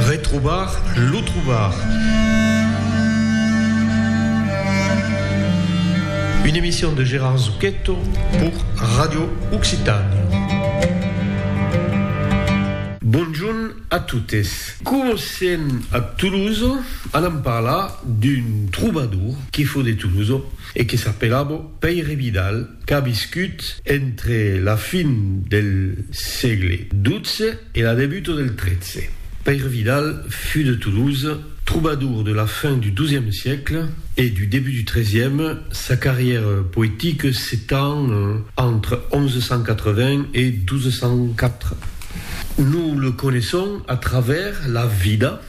Retrobar lo trobar. Une emission de Gérard Zucchetto pour Radio Occitània. Bonjorn a totes. Comencem a Toulouse, alam parlar d'un trobador que fo de Toulouse e que s'apelavo Pèire Vidal, qu'a viscut entre la fin del sègle 12 E la debuta del tretze. Pèire Vidal fut de Toulouse, trobador de la fin du dozième siècle e du début du trezième, sa carrière poétique s'étend entre 1180 et 1204. Nous le connaissons à travers la vida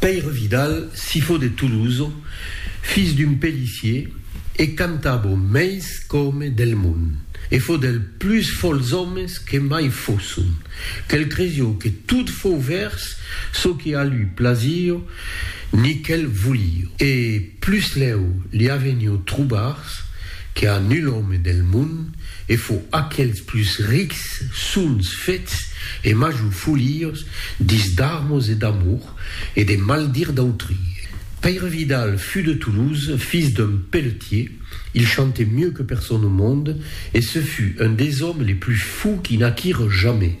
Pèire Vidal, sifó de Toulouse, fils d'un pellissier, e cantava au meis qu'òme del mond, e fó del plus fòls òmes que mai fósson, quel cresió que tot fó vèrs çò que a lui plasío ni quel volío. E plusslèu li avenió trobars que a nul òme del mond, e fo aquels plus rics sons fets e major foliors dits d'armos e d'amour e de maldir d'autri. Pèire Vidal fut de Toulouse, fils d'un pelletier, il chantait mieux que personne au monde, e ce fut un des hommes les plus fous qui naquirent jamais.